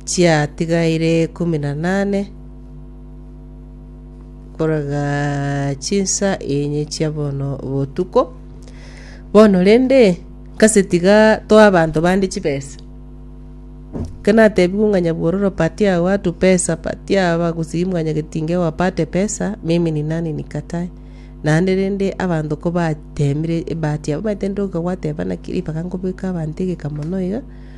chiatigaire ikomi na nane korega chinsa enye chia bono botuko. Bono rende nkase tiga toe abanto bande chibesa. Ekero natebigwe ng'a nyabwororo patia ya watu pesa, patia ya abagusii mwanyagetinge wapate pesa, mimi ni nani nikatae. Naende rende abanto kobateemire ebahati yabo omanyete ndoka gwateba naki ribaga nkobeka abanto egeka mono iga.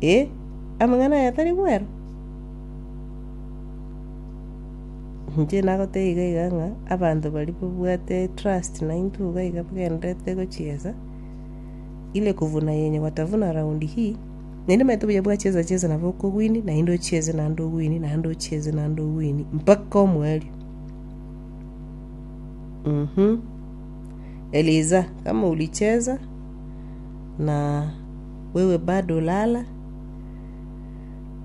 Eh, amang'ana aya tari bwero? Inche nagotebie iga iga ng'a abanto baria babwate etrust naintwe iga iga bagendererete gochiesa, ile kuvuna yenye watavuna raundi hii, naende omanyete buya bwachesa chesa nabo oko win naende ochiese naende o win naende ochiese naende o win mpaka omwalio. Eliza, kama ulicheza. na wewe bado olala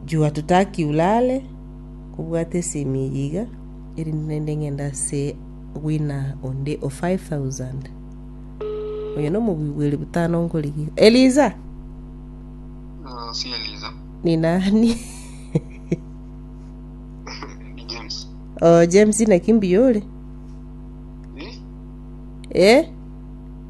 juu hatutaki ulale kobwate esemi eye iga erinde naende ng'ende ase owina onde o 5000 oyo nomobui bwa eri butano nkorigia eliza Ah, si Eliza. ni nani Ni James. oh, james nakimbi yore Eh? eh?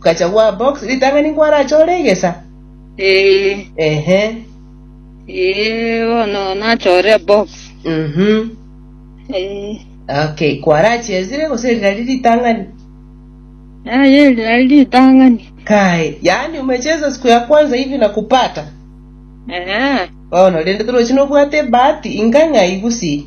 Gacha gwa box ritang'ani nkwarache ore egesa? Ee. Ehe. Ee, bono nachore ebox. Mhm. Ee. Okay, kwarachia esire gose rirari ritang'ani? Aye rirari ritang'ani. Kai, yaani umecheza siku ya kwanza hivi na kupata? Ee. Bono rende torochi nobwate ebahati inga ng'ai gusii?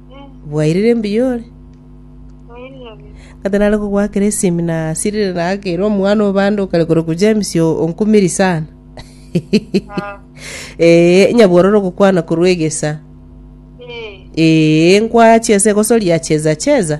Bwairire mbuya ore? Kata nare kogoakera esimi nasirire naakere omwana o bande okare korokwa James o- onkumiri sana. Ee, nyabwororo ogokwana korwa egesa. Ee, nkwachia ase egosoria cheza cheza.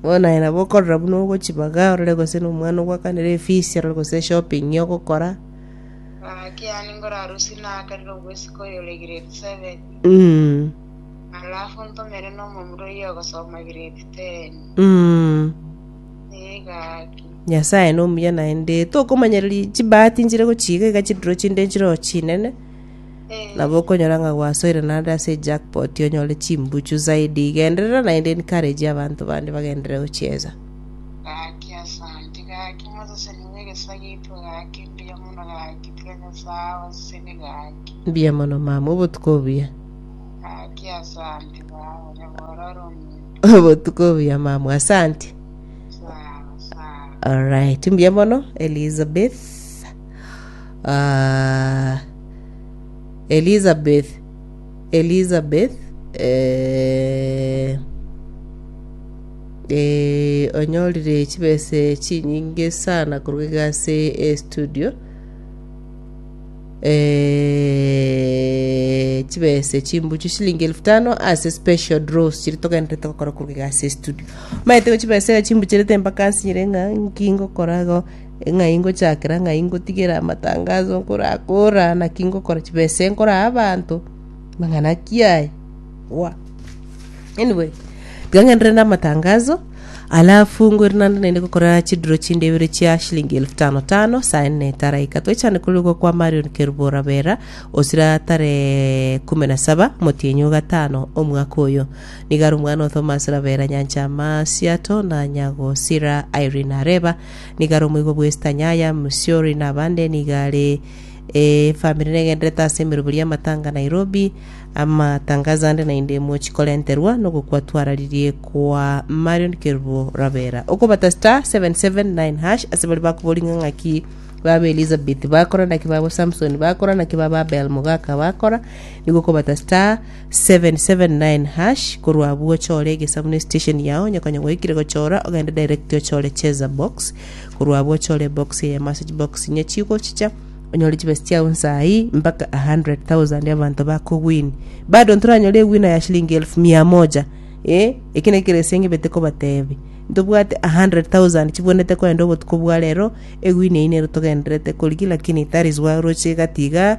Bono aye nabo okorora buna ogochibaga orore gose nomwana ogwakanera efees arore gose eshopping ogokora. Ah, kiani ngore arusi nakarire obwesika oyore grade seven, Mm. alafu ntomere nomomura oyio ogosoma grade ten. Mm. Ee, gaki. Nyasaye nomuya naende tokomanyereria chibahati nchire gochiga iga chidiro chinde nchiroho chinene. Nabo okonyora ng'a gwasoire naende ase ejackpot onyore chimbuchu zaidi igenderera naende encourage abanto bande bagenderere gochieza. Gaki asante gaki moseseni bw'egesa giaito gaki mbuya mono gaki tiga nyasae awe esegi gaki. Mbuya mono mama, obotuko obuya. Gaki asante baba nyabora ore ominto. Obotuko obuya mama, asante. Sawa sawa. Alright, mbuya mono Elizabeth. Ah, Elizabeth, Elizabeth, eh, eh, onyorire chibese chinyinge sana korwa iga ase e studio eh, chibese chimbuchu shilingi elfu tano ase special draws chiri togenderete gokora korwa iga ase e studio maete go chibese iga chimbucherete mpaka nsinyire ng'a nki ngokora igo Ng'ai ngochakera? Ng'ai ngotigera amatangaso nkorakora? Naki ngokora chibesa eye nkoraa abanto? Amang'ana ki aya? Wa. Anyway, tiga ng'enderere na amatangaso, alafu ngwere naende naende gokora chidiro chinde ibere chia shilingi elfu tano tano saa ene etaraika. Twechane korigwa kwa Marion Kerubora Bera, osira tarehe kumi na saba motienyi o gatano omwaka oyo. Niga are omwana o Thomas Rabera Nyanchama Siato na Nyagosira Irene Areba Nigo are omoigwa bw'esitanya ya Msori na abande nigo are efamiri negenderete ase emeroberio y'amatanga Nairobi. Amatangazo ande naende mochi korenterwa nogokwa twararirie kwa Marion Kerubo Rabera. Okobata star 779 hash ase baria bakoboringa ng'aki baba Elizabeth bakora naki baba Samson bakora naki baba Abel Mogaka bakora nigo okobata star 779# korwa abwo ochore egesamu ne station yao onye konya gwaikire gochora ogende direct ochore cheza box korwa abwo ochore ebox eye ya message box inye chigochicha onyore chibesa chiao nsayi mpaka 100000 abanto bakogwini bado ntoranyore ewina ya shilingi elfu mia moja eh eki naki kere ase ngebete kobatebi ntobwate 100000 chibwenete kogenda obotuko bwa rero ewini eyio nero togendererete korigi lakini that is why oroche egati igaa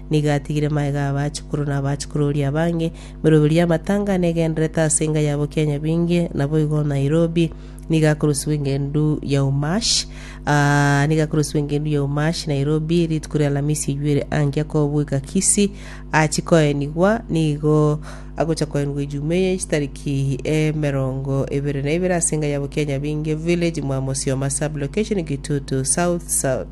Nigo atigire magega ’abachukuru na abachukuru oria abange, emeroberio y'amatanga negendererete ase enga yabo kia nyabinge, naboigo Nairobi nigo akorusigwa eng'endu ya Umash, aa, nigo akorusigwa eng'endu ya Umash, Nairobi, rituko ria Alamisi eyuere ankia kobueka Kisii, achie koenigwa, nigo agocha koenigwa Ejumaa eye chitariki emerongo ebere na ibere ase enga yabo kia nyabinge, Village Mwamosioma, Sub-location Kitutu South South.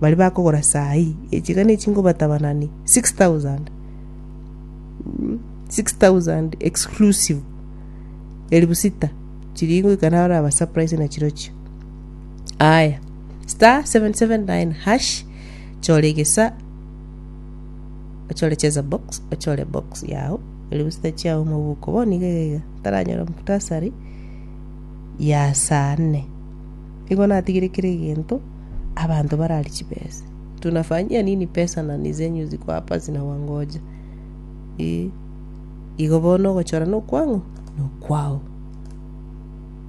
Baria bakogora saai, echiga ne chinko batabanani 6000, 6000 exclusive, elifu sita chiria ingoika naro naba surprise na chirochio. Aya, star 779 hash, chora egesa, ochore cheza box, ochore box yao, elifu sita chiao mobuko, bono iga iga iga, taranyora mukutasari ya saa nne. Igo natigire kera egento. abanto barari chibese. Tunafanyia nini pesa na nizenyu ziko hapa zinawangoja? Ii, igo bono ogochorana okwang'o nokwao.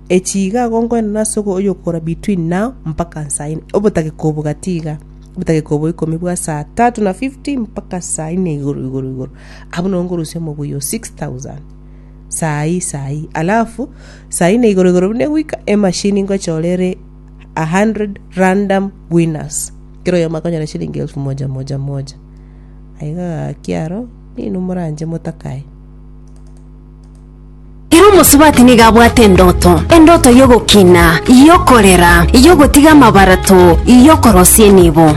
Echi iga agonkoenana ase ogo- oyokora between now mpaka nsaine obotageka obo gati iga obotageka obo ikomi bwa saa tatu na fifty mpaka saa ine igoro igoro igoro abwo nabo nkorusia omobuya o six thousand saa ii saa ii alafu saa ine igoro igoro buna egwika emashini nkochora ere a hundred random winners kera oyomo akonyora eshilingi elfu moja moja moja aiga gaki aro ninu moranche motakae Ere omosubati nigo abwate endoto, endoto y'ogokina, y'okorera, y'ogotiga amabarato, y'okorosia enibo.